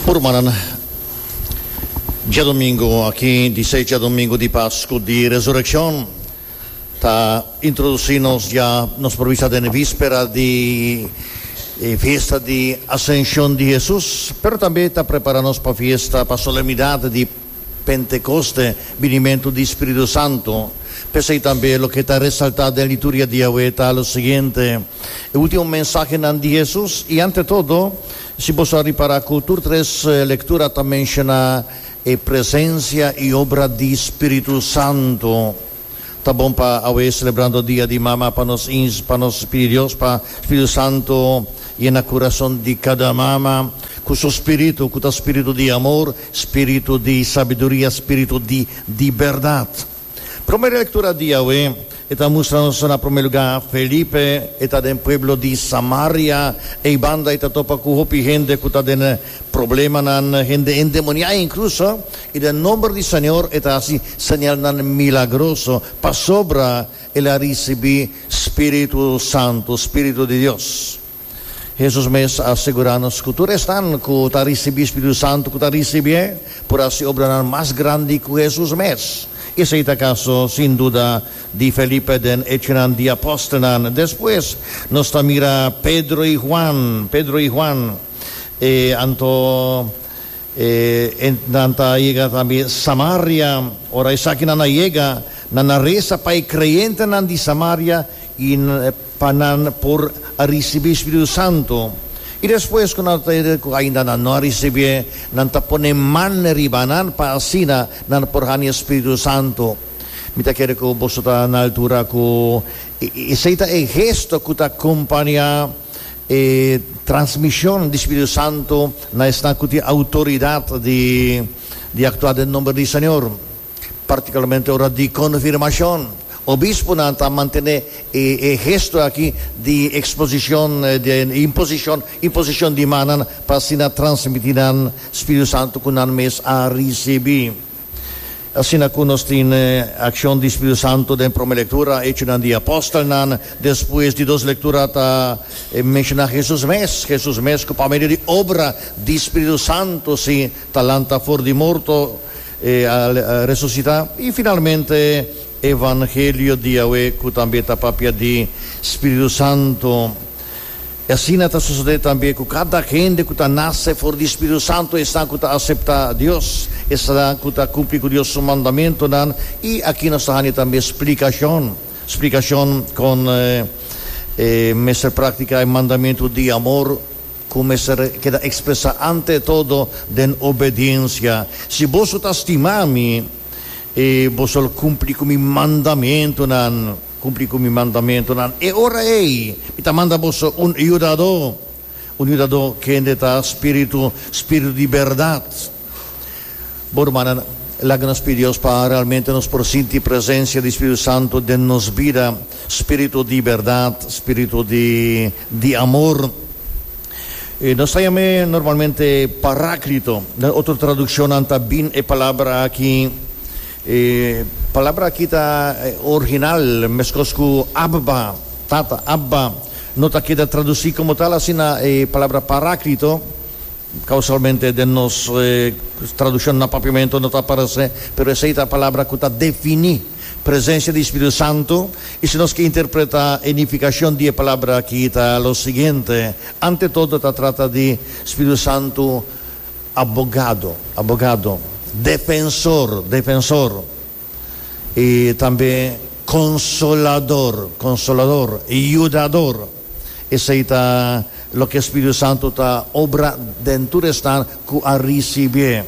Por rumannan, djadomingo aki di seis djadomingo di Pascu di Resureccion ta introduci nos dja, nos por bisa den e vispera di e fiesta di Ascencion di Jesus, pero tambe ta prepara nos pa fiesta, pa solemnidad di. Pentekoste, binimentu di Spiritu Santu. P'esei tambe loke ta resaltá den lituria di awe ta lo siguiente, e último mensahenan di Hesus. I ante todo, si boso a ripará ku tur tres lektura ta menshoná e presensia i obra di Spiritu Santu. Ta bon pa awe celebrando dia di mama pa nos ins pa nos pidi Dios pa Spiritu Santo yena curason di cada mama cu su spiritu cu ta spiritu di amor, spiritu di sabiduria, spiritu di di berdad. Prome lectura di awe e ta mustra nos na prome lugar Felipe e ta den pueblo di Samaria eibanda e ta topa cu hopi hende cu ta den Problemanan hende endemoniá inkluso i den nomber di Señor e ta hasi señalnan milagroso pasobra el a risibí spiritu santu, spiritu di Dios. Hesus mes a segurá nos ku tur esnan ku ta risibí spiritu santu ku ta risibié por hasi obranan mas grandi ku Hesus mes. Esei ta kaso sin duda di Felipe den Echonan di Apòstelnan. Despues nos ta mira Pedro i Huan, Pedro i Huan. E anto e nan ta yega tambe Samaria. Ora esakinan a yega, nan a resa pa e creyentenan di Samaria i pa nan por a ricibi e Spiritu Santo. I despues cu nan cu ainda nan no a ricibié, nan ta pone man riba nan pa asina nan por hani e Spiritu Santo. Mi ta kere cu boso ta na altura cu esei ta e gesto cu ta acompania. E transmishon di Spiritu Santu na esnan ku tin outoridat di aktua den nomber di Señor, partikularmente ora di konfirmashon. Obisponan ta mantené e gesto aki di eksposishon di imposishon, imposishon di mannan, pa asina transmití nan Spiritu Santu ku nan mes a risibí. Asina cu nos tin accion di Spiritu Santo den prome lectura, Hechonan di Apostelnan, despues di dos lectura ta menciona Jesus mes, Jesus mes cu pa medio di obra di Spiritu Santo si ta lanta for di morto, e a resucita, y finalmente Evangelio di Yahweh cu tambe ta papia di Spiritu Santo. I asina ta sosodé tambe ku kada hende ku ta nase for di Spiritu Santu esnan ku ta aseptá Dios, esnan ku ta kumpli ku Dios su mandamentunan. I aki nos ta hani tambe splikashon, splikashon kon e mester praktiká e mandamentu di amor ku mester keda ekspresá ante todo den obediensia. Si boso ta stima mi, i boso lo kumpli ku mi mandamentunan. Cumpli cu mi mandamentonan. E ora ey mi ta manda boso un yudador, un yudador kende ta spiritu, spiritu di berdad. Bo rumannan, laga nos pidi Dios pa realmente nos por sinti presencia di Spiritu Santo den nos bida, spiritu di berdad, spiritu di di amor. E nos ta yam'e normalmente Paraclito. Den otro traduccionnan ta bin e palabra aki E palabra aki ta orginal meskos ku Abba, Tata, Abba. No ta keda tradusí komo tal asina e palabra Paráklito. Kousalmente den nos tradukshon na papiamentu no ta aparesé, pero esei ta palabra ku ta definí presensia di spiritu santu. I si nos ke interpretá e nifikashon di e palabra aki ta lo siguiente, ante todo ta trata di spiritu santu. Abogado, abogado. Defensor, defensor. I tambe konsolador, konsolador. Yudador. Esei ta loke e Spiritu Santu ta obra den tur esnan ku a risibié.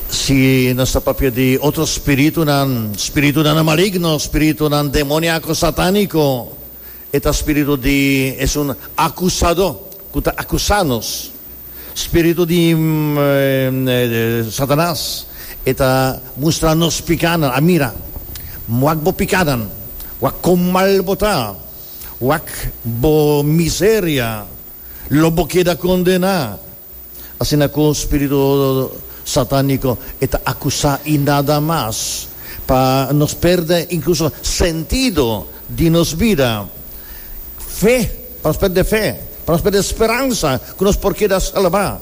Si nos ta papia di otro spiritunan, spiritunan maligno, spiritunan demoniako, satániko, E ta spiritu di, es un acusador cu ta acusa nos, spiritu di Satanas. E ta mustra nos picanan, a mira, wak bo picanan, wak con mal bo ta, wak bo miseria, lo bo keda condena. Asina ku un spiritu satániko e ta akusá i nada mas pa nos pèrdè inkluso sentido di nos bida, fe, pa nos pèrdè fe, pa nos pèrdè speransa ku nos por keda salbá.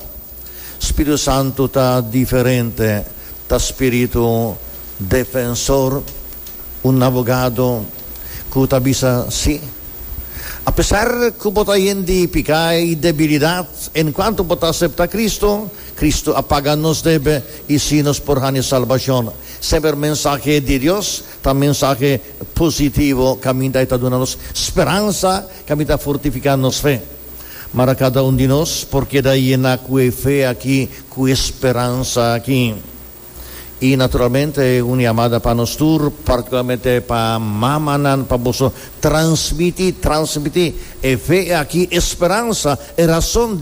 Spiritu Santu ta diferente, ta spiritu defensor, un abogado. ku ta bisa si. Apesar ku bo ta yen di piká i debilidat, enkuanto bo ta aseptá Kristu, Kristu a paga nos debe i si nos por hani salbashon. Semper mensahe di Dios ta mensahe positivo kaminda e ta duna nos speransa, kaminda ta fortifiká nos fe. Mara kada un di nos por keda yena ku e fe akí, ku e speransa akí. Y naturalmente un yamada pa nos tur, particularmente pa mamanan, pa boso transmiti, transmiti e fe aki, e speransa, e razon di.